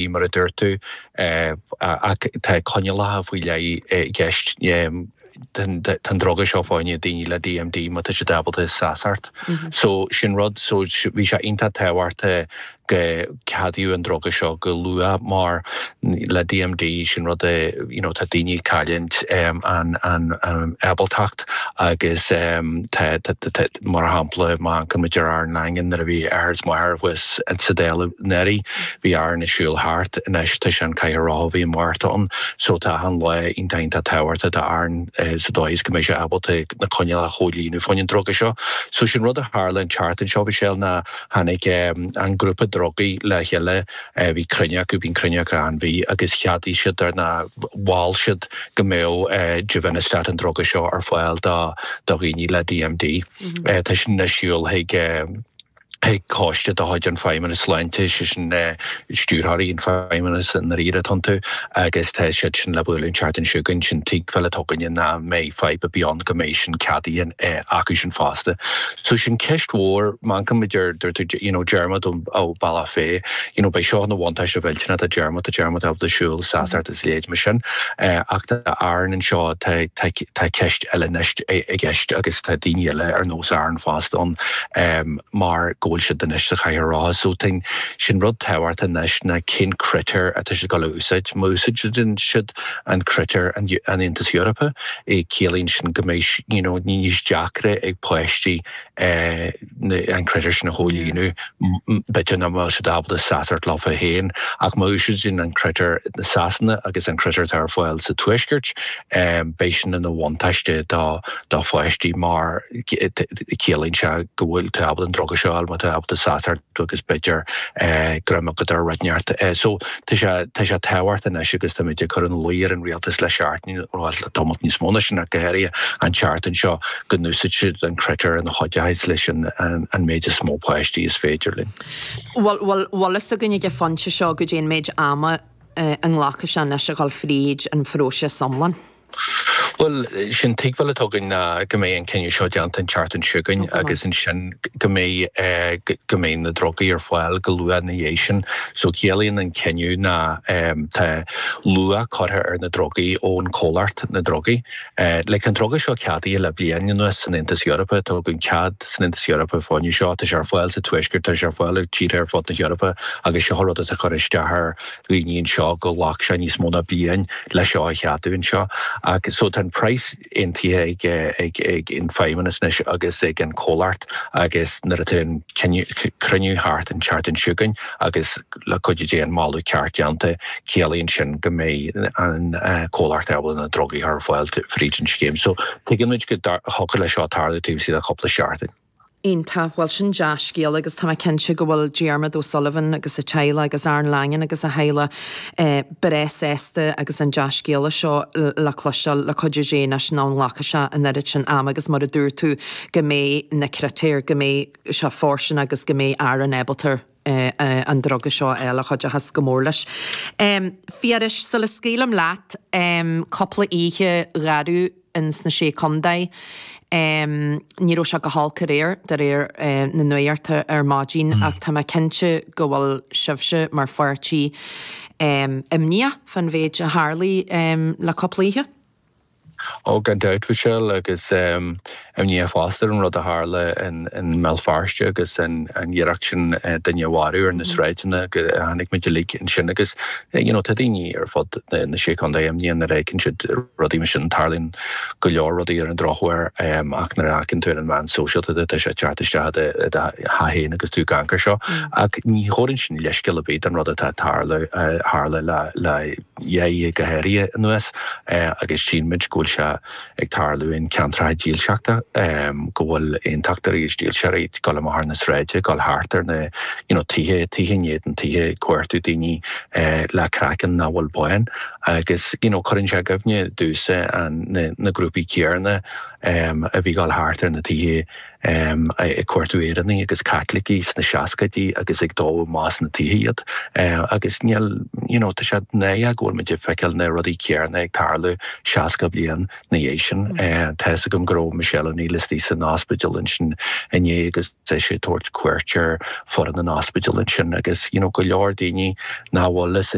Ní mar a dúirt tú é, ach tá coinníollacha faoi leith i gceist. Tá an druga seo fá choinne daoine le DMD má tá siad ábalta seasacht. So sin rud, so bhí sé iontach tábhachtach go gceadódh an druga seo go luath mar le DMD, sin rud a, you know, tá daoine ag cailliúint an ábaltacht. Agus tá, mar shampla, má amharcann muid ar Aaron Langan, nuair a bhí a athair is a mháthair thuas sa Dáil anuraidh, bhí Aaron ag siúl thart. Anois, tá sé sa chathaoir rotha ó mhí Márta ann. So, tá achan lá iontach, iontach tábhachtach d'Aaron sa dóigh is go mbeidh sé ábalta na coinníollacha a chomhlíonadh fá choinne an druga seo. So, sin rud a tharla an tseachtain seo, Mhichelle, ná tháinig an grúpa drugaí le chéile, Bhí cruinniú acu, bíonn cruinniú acu achan mhí, agus cheadaigh siad é nó mhol siad go mbeadh Givinostat, an druga seo, ar fáil do dhaoine le DMD. Tá sin anois ag gabháil chuig chuig coiste de chuid an Feidhmeannas Sláinte, sé sin stiúrthóirí an Feidhmeannas i ndáiríre atá iontu, agus tá siad sin le bualadh an tseachtain seo chugainn, sé an tuigbheáil atá againne nach mbeidh fadhb ar bith ann go mbeidh sin ceadaithe acu sin fosta. So sé an cheist mhór, má amharcann muid ar, dúirt tú you know Diarmuid ó Bhealach Féich you know beidh seo ina bhuntáiste mhillteanach do Diarmuid, tá Diarmuid ábalta siúl, seasacht is a leithéid mar sin eh ach tá Aaron anseo tá tá tá ceist eile anois i gceist agus tá daoine eile ar nós Aaron fosta ann em mar go bhfuil siad anois sa chathaoir rotha so tá, sé an rud tábhachtach anois ná cén critéir atá siad ag gabháil a úsáid má úsáideann siad an critéir an Aontas Eorpaigh, ciallaíonn sin go mbeidh you know níos deacra ag páistí an critéir sin a chomhlíonadh, b'fhéidir nach mbeadh siad ábalta seasacht leofa féin ach má úsáideann an critéir na Sasana agus an critéir atá ar fáil sa Tuaisceart beidh sin ina bhuntáiste do do pháistí mar ciallaíonn sé go bhfuil tú ábalta an druga seo a fháil má tá tú ábalta seasacht agus b'fhéidir greim agat ar rud inteacht so Tá sé tábhachtach anois agus tá muid ag cur ina luí ar an rialtas le seachtain nó le tamalt níos mó ná sin ach go háirithe an tseachtain seo go n-úsáidfidh siad an critéar a chuideochas leis an méid is mó páistí is féidir linn. Bhuel, bhfuil fhios againn ag an phointe seo caidé an méid ama a nglacfaidh sé anois a dhul fríd an phróiseas iomlán? Bhuel, sé an tuigbheáil atá againn ná go mbeidh an cinneadh seo déanta an tseachtain seo chugainn agus ansin go mbeidh, go mbeidh na drugaí ar fáil go luath ina dhiaidh sin. So ciallaíonn an cinneadh ná tá luach curtha ar na drugaí ón chomhlacht, na drugaí. Like tá an druga seo ceadaithe le bliain anuas san Aontas Eorpach, tá againn cead san Aontas Eorpach fá choinne seo, tá sé ar fáil sa Tuaisceart, tá sé ar fáil i dtíortha ar fud na hEorpa agus seo rud atá ag cur isteach ar dhaoine anseo go ghlac sé níos mó ná bliain le seo a cheadú anseo ach so tá an praghas aontaithe ag ag an Fheidhmeannas anois agus ag an comhlacht agus nuair atá an cruinniú thart an tseachtain seo againn agus le cuidiú Dé an moladh ceart déanta ciallaíonn sin go mbeidh an comhlacht ábalta na drugaí a chur ar fáil fríd an scéim so tuigeann muid go dtiocfadh leis seo tarlú taobh istigh de chúpla seachtain. Iontach. Bhuel, sin dea-scéal agus tá mé cinnte go bhfuil Diarmaid O'Sullivan agus a teaghlach agus Aran Langan agus a theaghlach breá sásta agus an dea-scéala seo le cloisteáil le cuidiú Dé anois nach nglacfaidh sé an oiread sin ama agus mar a dúirt tú go mbeidh na critéir, go mbeidh sé fairsing agus go mbeidh Aran ábalta an druga seo a fháil a chuideochas go mór leis. Phiarais, sula scaoilim leat, cúpla oíche gharbh in sna Sé Chontae, ní raibh sé go holc aréir, de réir na nuachta ar maidin, ach tá mé cinnte go bhfuil sibhse, mar pháirtí, imníoch fán mhéid a tharlaigh le cúpla oíche. Oh, gan dabht, Mhichelle, agus imní fosta ar an rud a tharla i mBéal Feirste agus an iarracht sin duine a mharú ar na sráideanna, cháin muid uilig é sin agus you know tá daoine ar fud na Sé Chontae imníoch nuair a fheiceann siad rudaí mar sin, tarlaíonn go leor rudaí ar an drochuair ach nuair a fheiceann tú ar an mheán sóisialta tá sé ag teacht isteach i do theach féin agus tú ag amharc air seo ach ní thugann sin leithscéal ar bith don rud atá ag tarlú, tharla le. dhá oíche go háirithe anuas agus tchíonn muid go bhfuil sé ag tarlú in ceantracha dílseachta, go bhfuil aontachtóirí agus dílseoirí ag dul amach ar na sráide, ag dul thart ar na you know tithe, tithe in éadan tithe ag cuartú daoine le craiceann nach bhfuil bán agus you know cuireann sé i gcuimhne domhsa an na grúpaí céanna a bhí dul thart ar na tithe ag cuartú Éireannaigh agus Caitlicigh sna seascaidí agus ag dó amach as na tithe iad agus níl you know tá sé náireach go bhfuil muid ag feiceáil na rudaí céanna ag tarlú seasca bliain na dhiaidh sin. Tá fhios agam go raibh Michelle O'Neill istoigh san ospidéal ansin inné agus í ag tabhairt cuairt ar foireann an ospidéil ansin agus you know go leor daoine nach bhfuil fhios